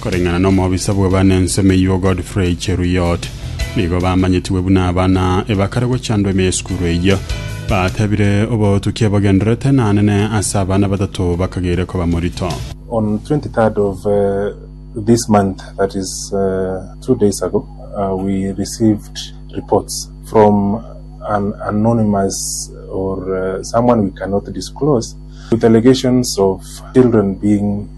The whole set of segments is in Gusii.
Koreng'ana nomobisa bw'abana ensemo eyio Godfrey Cheruiyot, nigo bamanyetigwe buna abana ebakare gochandwa ime y'esukuru eyio. Batebire, Obotukia bogendererete nanene ase abana batato bakageire koba morito. On 23rd of uh, this month, that is uh, two days ago, uh, we received reports from an anonymous or uh, someone we cannot disclose with allegations of children being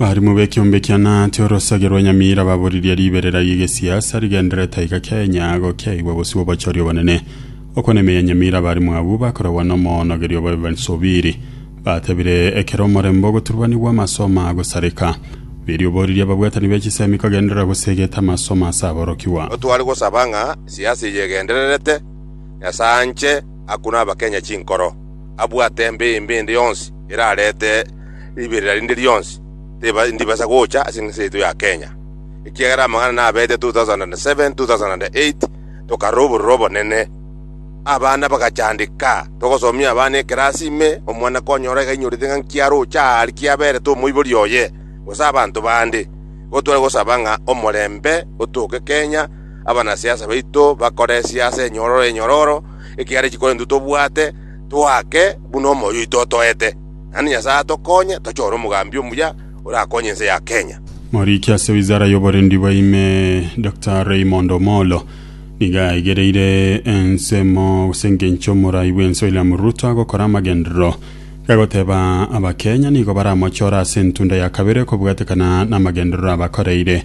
Abaarimo b'ekeombe kia Naate orosage rwa Nyamira baboririe riberera ri'egesiasa rigenderere taiga Kenya agwo kiaigwa bosio bw'obochori obonene. Okwo n'ime ya Nyamira abaarimo abwo bakoragwa n'omoonogeria obo Evans Obiri. Batebire ekero omorembe ogoturubanigwa amasomo agosareka. Obiri oboririe ababwatani be chisemi kogenderera gosegeta amasomo ase aborokigwa. Otware gosaba ng'a siasa eye egendererete, Nyasae anche, akune Abakenya chinkoro. abwate embeyo embe ende yonsi erarete riberera rinde rionsi, teba ndibasa gocha ase ense yaito ya Kenya, ekiagera amang'ana nabete 2007, 2008 tokarora obororo obonene, abana bagachandeka, togosomia abana ekerasi ime, omwana konyora iga ainyorete ng'a nki aroche aa rikia aberete omoibori oye, gose abanto bande. Igo tware gosaba ng'a omorembe otoke Kenya, abanasiasa baito bakoresie ase enyororo enyororo, Ekiagera chikoro intwe tobwate toake buna omoyo oito otoete, naende Nyasae atokonye tochore omogambi omuya orakonye ense ya Kenya. Moriki ase wizara y'oborendi bw'eime, Doctor Raymond Omollo, nigo aigereire ensemo gose engencho omorai bw'ense William Ruto agokora amagenderero gagoteba Abakenya nigo baramochore ase entunda ya kabere kobwatekana namagenderero abakoreire